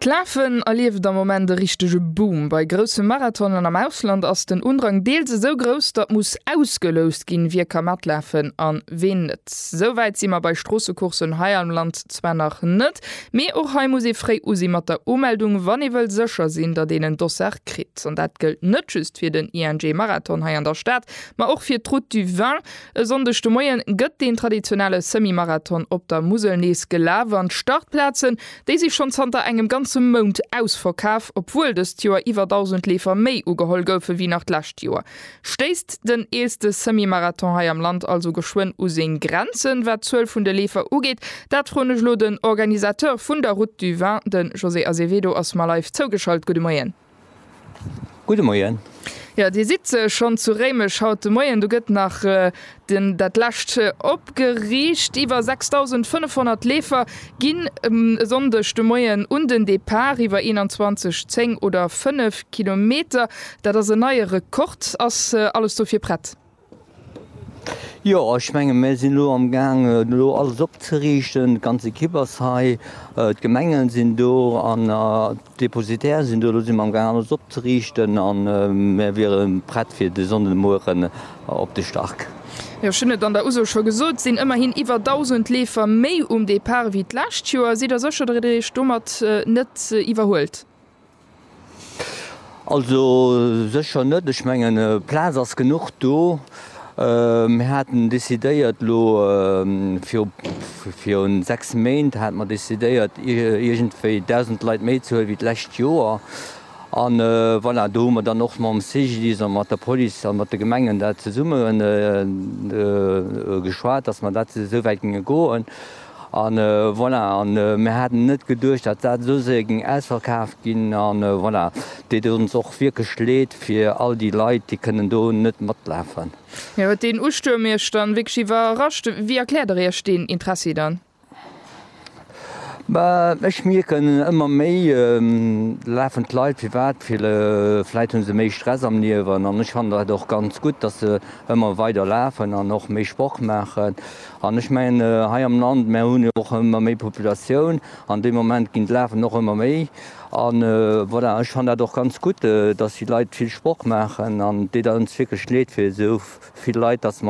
D'Lafen erlieft am Moment e richtege Boom. Bei grousse Marathonen am Ausland ass den Undrang deels esou grouss, datt muss ausgeloust ginn, wie ka matlafen a ween net. Esou wäit si mer bei Stroossecourssen hei am Land zwar nach net, mee och hei muss ee fréi u si mat der Umeldung, wann ee wëll sécher sinn, datt een en Dossard kritt. An dat gëllt net just fir den ING-Marathon hei an der Stad, ma och fir d'Route du Vin. E Sonndeg de Moien gëtt deen traditionelle Semi-Marathon op der Musel nees gelaf an d'Startplazen, déi si schonn zanter engem ganze Mount ausverkaf, obwuel dëst Joer iwwer 1.000 Leefer méi ugeholl goufe wéi nach d'lescht Joer. Stéisst den eelste Semi-Marathon hei am Land also geschwënn u seng Grenzen, wat d'Zuel vun de Leefer ugeet? Dat froen ech elo den Organisateur vun der Route du Vin. De José Azevedo ass mer live zougeschalt. Gudde Moien. Gudde Moien. Jo, Dir sidd schonn zu Réimech haut de Moien. Do gëtt nach den dat lescht opgeriicht. Iwwer 6.500 Leefer ginn e Sonndeg de Moien un den Depart, iwwer 21, 10 oder 5 Kilometer. Dat ass en neie Rekord. Ass alles dofir prett? Jo, ech menge mir sinn elo am Gaang elo alles opzeriichten. D'ganz Ekipp ass hei, d'Gemengen sinn do an d'Depositaire sinn do. Elo si mer am Gaang alles opzeriichten a mir wiere prett fir de Sonnden de Mueren op de Start. Jo, ech hunn et an der Uso scho gesot, et sinn ëmmerhin iwwer 1.000 Leefer méi um Depart ewéi d'lescht Joer. Sidd Der sécher, datt Dir Iech domat net iwwerhuelt? Also sécher net. Ech mengen, Plaz ass genuch do. Mir haten decidéiert elo viru, virun sechs Méint hate mer decidéiert, iergendwéi 1.000 Leit méi ze huelen wéi d'lescht Joer. An voilà, do hu mer dann och mam CGDIS a mat der Police a mat de Gemengen dat zesummen geschwat, datt mer dat esou wäit géinge goen. An voilà, an mir haten net geduecht, datt dat esou séier géing ausverkaaft ginn. An voilà, et deet ons och wierklech Leed fir all déi Leit, déi kënnen do net matlafen. Mir huet deen Ustuerm Iech dann wierklech iwwerrascht. Wéi erkläert der Iech deen Interessi dann? Bah, ech mierken ëmmer méi, do lafen d'Leit. Firwat? Well vläit hu se méi Stress am Liewen. An ech fannen dat och ganz gutt, datt se ëmmer weider lafen an och méi Sport maachen. An ech mengen, hei am Land, mär hunn jo och ëmmer méi Populatioun an dee Moment ginn d'Lafen och ëmmer méi. A voilà, ech fann dat och ganz gutt, datt déi Leit vill Sport maachen an et deet ons wierklech leed fir esou vill Leit, datt.